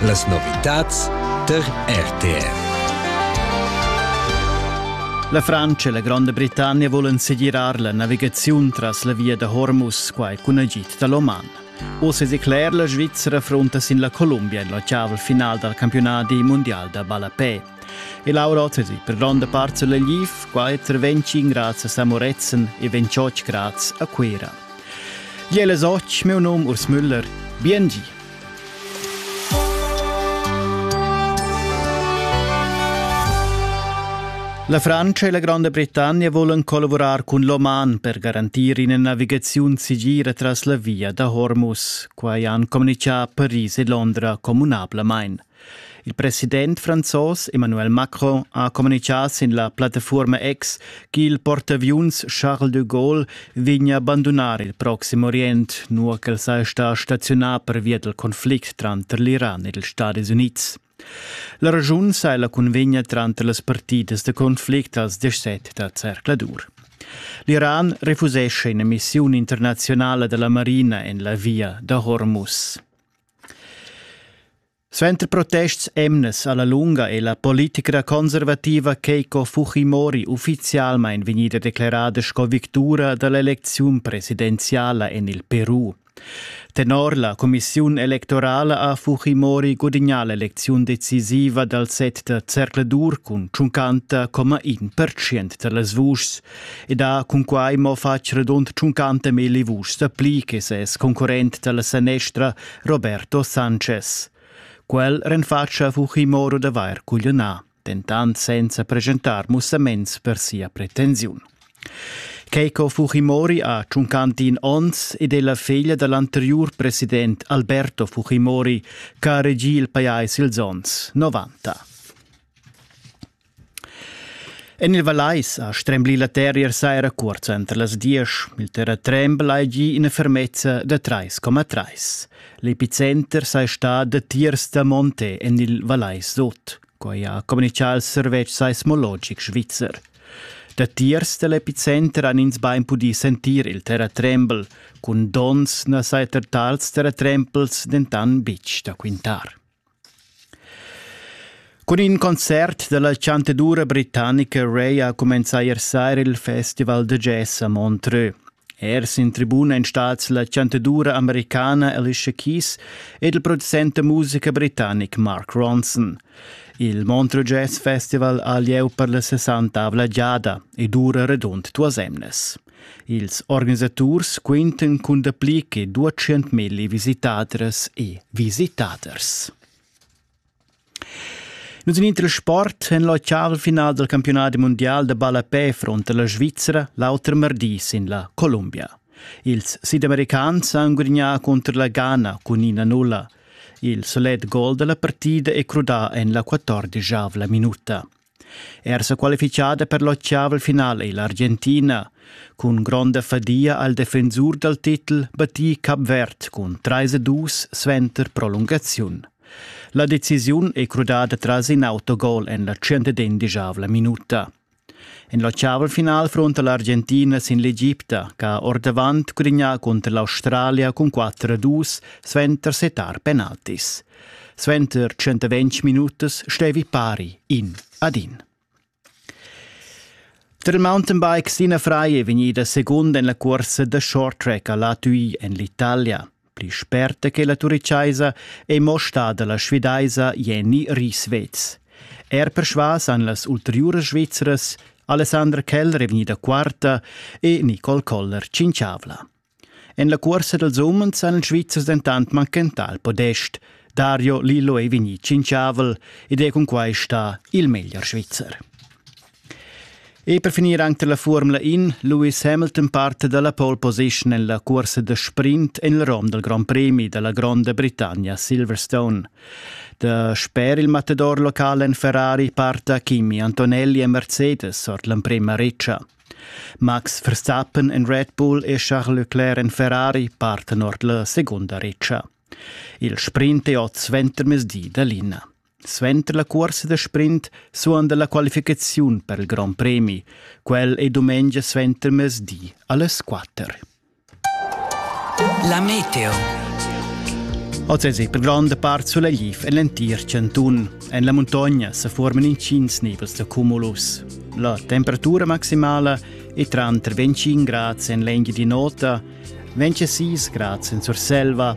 Las novitads tar RTR. La Francia e la Gronda Britannia volen segirar la navigaziun tras la via da Hormuz, quai cun agid da l'Oman. Oz è decler la Svizzera fronta sin la Columbia en la chaval final dal campionat mundial da ballapè. E Laura Otterig per gronda part sur l'Eliv, qua è intervenci grazie a Moretzen e 28 grazie a Cuera. Jele Soc, meu nome Urs Müller, BNG. La Francia e la Granda Britannia volan collavurar cun l'Oman per garantir ina navigaziun sigira tras la via da Hormuz. Quai han communicà Paris e Londra communablamain. Il president franzos Emmanuel Macron ha communichà sin la plattafuorma X ch'il portaviuns Charles de Gaulle vegna abandonar il Proxim Orient, nua ch'el saja stà staziunà pervia dal conflict tranter l'Iran ed ils Stadis Unids. La ragiun sai la cunvegna tranter las partidas da conflict als 17 da Zercladur. L'Iran refusesce in'emissiun internazionala della marina en la via da Hormuz. Suenter protests emnas alla lunga è la politica conservativa Keiko Fujimori ufficialmein vegnida declarada sco victura dall'elecziun presidenziala en il Peru. Tenor la commissiun electorala ha Fujimori gudignà l'elecziun decisiva dal set da zercladur cun 50,1% da las vuschs. Ed ha cunquai mo fatg redund tschuncante melli vuschs pli che ses concurrent dalla sanestra Roberto Sanchez. Quel renfatscha Fujimoro d'avair cugliunà, dentant senza presentar mussaments per sia pretensiun. Keiko Fujimori ha tschuncantin onns ed è la feglia da l'anteriur president Alberto Fujimori, che ha regì il pajais ils onns 90. En il Vallais ha stremblì la terra ier saira curta entr las diesch. Il terratrembel ha gì ina fermezza da 3,3. L'epicenter sei stà datiers da Monte en il Vallais Sud. Quai ha communichà il servetsch seismologic svizzer. Datiers dall'epicenter han ins bein pudì sentir il terratrembel, cun dons na sai er tals terratrempels dentan bitg da quintar. Cun in concert dalla chantadura britannica Ray ha cumenzà ier saira il festival da jazz a Montreux. Er sin tribuna en stats la chantadura americana Alicia Keys ed il producent da musica britannic Mark Ronson. Il Montreux Jazz Festival ha lieu per la sessantavla giada e dura radund duas emnas. Ils organisaturs quintan cun dapli che 200.000 visitadras e visitaders. Nus in inter sport en la final del campionat mondial de ballapè fronte la Svizzera l'auter mardi sin la Columbia. Ils sidamericans han gudignà contro la Ghana cun ina nulla. Il solet gol della partida è crudà en la 14 minuta. Er sequalifichada per l'ottavel final ei l'Argentina. Cun gronda fadia al defensur dal titel battì Capvert cun 3-2 suenter prolungaziun. La decisiun è crudada tras in autogol en la 110 minuta. En l'ottavel final fronta l'Argentina sin l'Egipta, che ha ordavant cugrignà cunter l'Australia cun 4-2 suenter setar penaltis. Suenter tschentaventg minutas stevi pari in ad in. Tar mountainbikes d'ina fraia è vegnida segunda en la cursa da short track a Latui en l'Italia. Pli sperta che la turichaisa è mo stada la svedaisa Jenny Rieswetz. Er persvas han las ulteriuras svizras Alessandra Keller è vegnida quarta e Nicole Koller cinciavla. En la cuorsa dals umens han ils Svizzers dentant manchentà il podest. Dario Lillo è vegnì tschintschavel ed è cunquai stà il meglier Svizzer. E per finir anche la Formula In, Lewis Hamilton parte dalla pole position en la cursa da sprint en il rom dal Grand Premi dalla Gronda Britannia Silverstone. Da sper il matador locale en Ferrari parta Kimi Antonelli e Mercedes ord l'emprema reccia. Max Verstappen en Red Bull e Charles Leclerc en Ferrari parten ord la secunda retscha. Il sprint è oz ventermezdi da l'ina. Suenter la cuorsa da sprint suonda la qualificaziun per il Grand Premi. Quel è dumengia suentermezdi alle 4. La meteo. Oz es per gronda part sulegl en l'entir chantun. En la muntogna se forman intgins nivels da cumulus. La temperatura maximala è tranter 25 grads en l'engia di nota, 26 grads en Surselva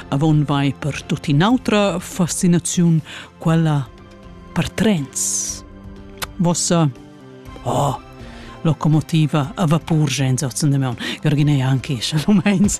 avon vai per tut in'autra fascinaziun, quella per trens. Vossa oh, locomotiva a vapur gens ozen de meun, Gerginei anche, shalom heinz.